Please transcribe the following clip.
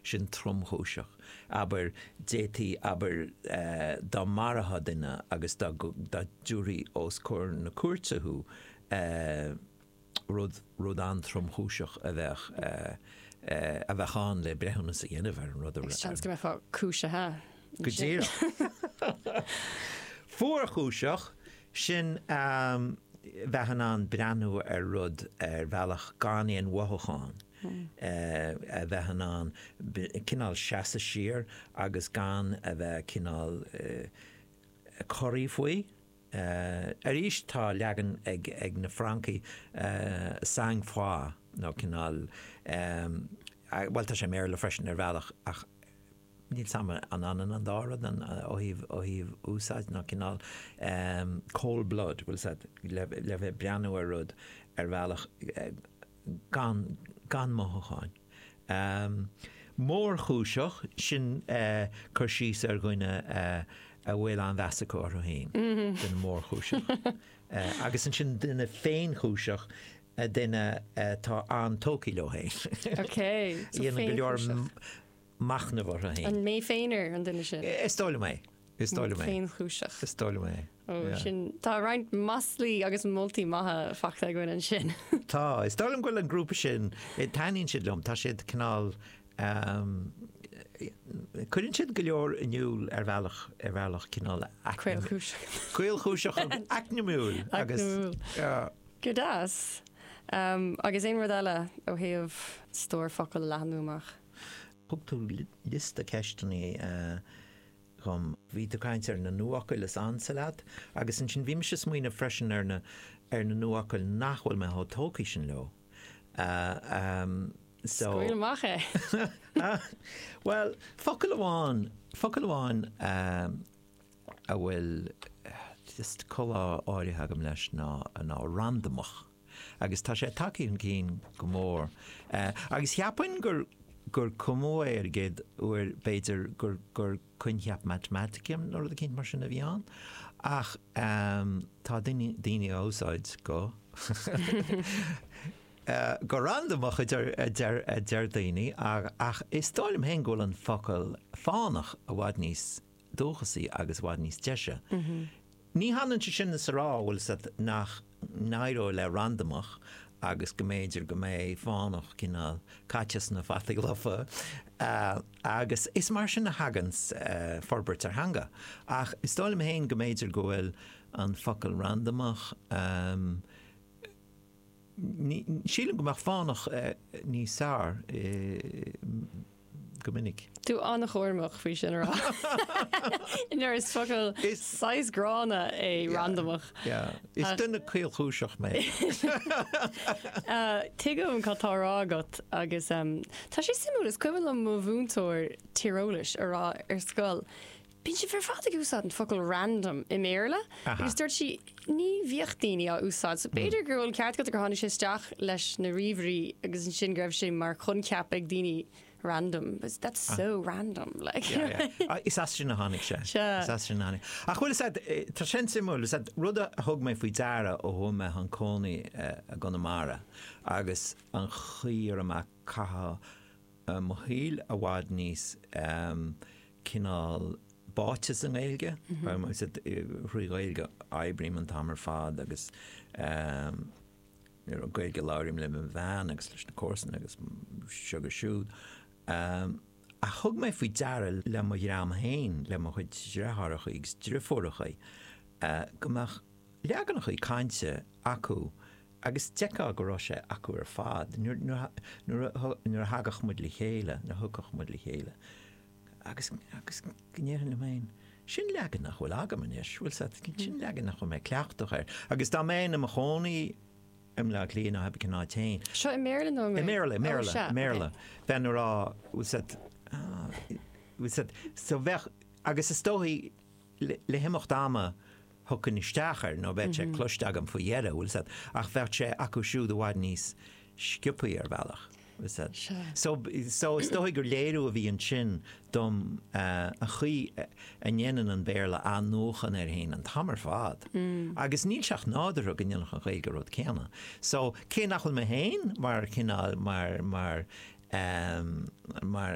sin tromchúiseach, abair, d'fhéadfaí, abair, dá maraíodh duine agus dá dtiúrfaí os comhair na cúirte thú, rud, rud an-tromchúiseach a bheadh, a bheadh ann le breithiúnas a dhéanamh ar an rud. Is seans go mbeifeá cúisithe. Go díreach. Fuarchúiseach, sin, bheith in ann breathnú ar rud ar bhealach gan aon mhothúchán. a bheith in ann cineál seasadh siar agus gan a bheith cineál corraithe faoi. Arís tá leagan ag na Francaigh sang froid nó cineál, bhuel tá sé i mBéarla freisin ar bhealach ach níl 's a'm an ionann an dá rud ó thaobh úsáid nó cineál cold blood, bhuel le bheith ag breathnú ar rud ar bhealach, gan gan mothúcháin. mórchúiseach, sin cur síos ar dhuine a bhfuil an-mheas acu orthu féin, duine mórchúiseach. Agus ansin duine féinchúiseach, duine atá an-tógtha leo féin. Déanann go leor machnamh orthu féin. An mé féin ar an duine sin? Is dóigh liom é. Is dóigh liom é. Féinchúiseach. Is dóigh liom é. Ó, Yeah. sin, tá roinnt maslaí agus moltaí maithe faighte againn ansin. Tá. Is dóigh liom go bhfuil an grúpa sin, eh, taitníonn siad liom, tá siad cineál, ehm, eh, cuireann siad go leor in iúl ar bhealach, ar bhealach cineál acla- Caolchúiseach. caolchúiseach agus acmhainniúil agus, Acmhainniúil. yeah. Go deas. Ehm, agus aon rud eile ó thaobh stór focal a leathnú amach? Thug tú liosta ceisteanna dhom. Bhí tú ag caint ar na nuafhocail is ansa leat, agus ansin bhí mise ag smaoineamh freisin ar na, ar na nuafhocail nach bhfuil mé chomh tógtha sin leo. So. Scaoil amach é! Bhuel, focal amháin, focal amháin a bhfuil just col áirithe agam leis ná, ná randamach. agus tá sé tagtha chun cinn go mór. Agus cheapfainn gur gur cumadh é ar an gcéad uair, b'fhéidir, gur gur coincheap matamaitice nó rud éicint mar sin a bhí ann. Ach tá daoine daoine á úsáid go go randamach a deir a deir a deir daoine, ach is dóigh liom féin go bhfuil an focal fánach i bhfad níos dúchasaí agus i bhfad níos deise. Ní hionann é sin is a rá, bhuel 's a'd, nach n-éireoidh le randamach agus go mb'fhéidir go mbeidh fánach cineál caite sna fataí lofa, agus is mar sin a thagann forbairt ar theanga. Ach is dóigh liom féin go mb'fhéidir go bhfuil an focal randamach, ní, sílim go mbeadh fánach níos fearr. go minic. Tú an-chúramach faoi sin a rá. Nuair is focal saghas gránna é randamach. Is duine caolchúiseach mé. Tuigim cad tá á rá agat agus tá sé suimiúil, is cuimhin liom mo mhúinteoir tíreolais ag rá ar scoil, Bíonn sibh ar fad ag úsáid an focal random i mBéarla agus dúirt sí ní bhíodh daoine á úsáid so b'fhéidir go bhfuil an ceart agat gur tháinig sé isteach leis na ríomhairí agus ansin go raibh sé mar choincheap ag daoine random but that's so random like yeah is as sin a tháinig sé is as sin a tháinig ach bhuel is ea tá sin suimiúil is ea rud a thug mé faoi deara ó chuaigh mé chun cónaí i gConamara agus an chaoi a raibh mé ag caitheamh mo shaoil i bhfad níos cineál báite sa nGaeilge, thrí Ghaeilge a oibrím an t-am ar fad agus gur Gaeilge a labhraím le mo bhean agus leis na comharsana agus seo agus siúd. Ach thug mé faoi deara le mo dhream féin, le mo chuid deartháireachaí agus driofúrachaí, go mbeadh leaganachaí cainte acu agus d'fheicfeá go raibh sé acu ar fad, nuair a thagadh muid le chéile, nuair a thiocfadh muid le chéile. agus, agus, go ndéarfainn liom féin, Sin leagan nach bhfuil agam anois, bhfuil a fhios agat? Sin leagan nach bhfuil mé cleachtach air. Agus dá mbeinn i mo chónaí i mBleá Cliath nó cibé cén áit féin. Seo i mBéarla nó i mBéarla? I mBéarla, i mBéarla, i mBéarla. Bheinn ag rá, bhfuil a fhios agat, bhfuil a fhios agat, so bheadh, agus is dóigh, le himeacht ama thiocfainn isteach air nó bheadh sé cloiste agam faoi dheireadh, bhfuil a fhios agat, ach bheadh sé acu siúd i bhfad níos sciopthaí ar bhealach, bhfuil a fhios agat. So, so is dóigh gur léiriú a bhí ansin dom an chaoi a ndéanann an Béarla athnuachan air fhéin an t-am ar fad agus níl sé ach nádúrtha go ndéanfadh an Ghaeilge an rud céanna. So, cé nach bhfuil mé féin mar chineál, mar, mar, mar,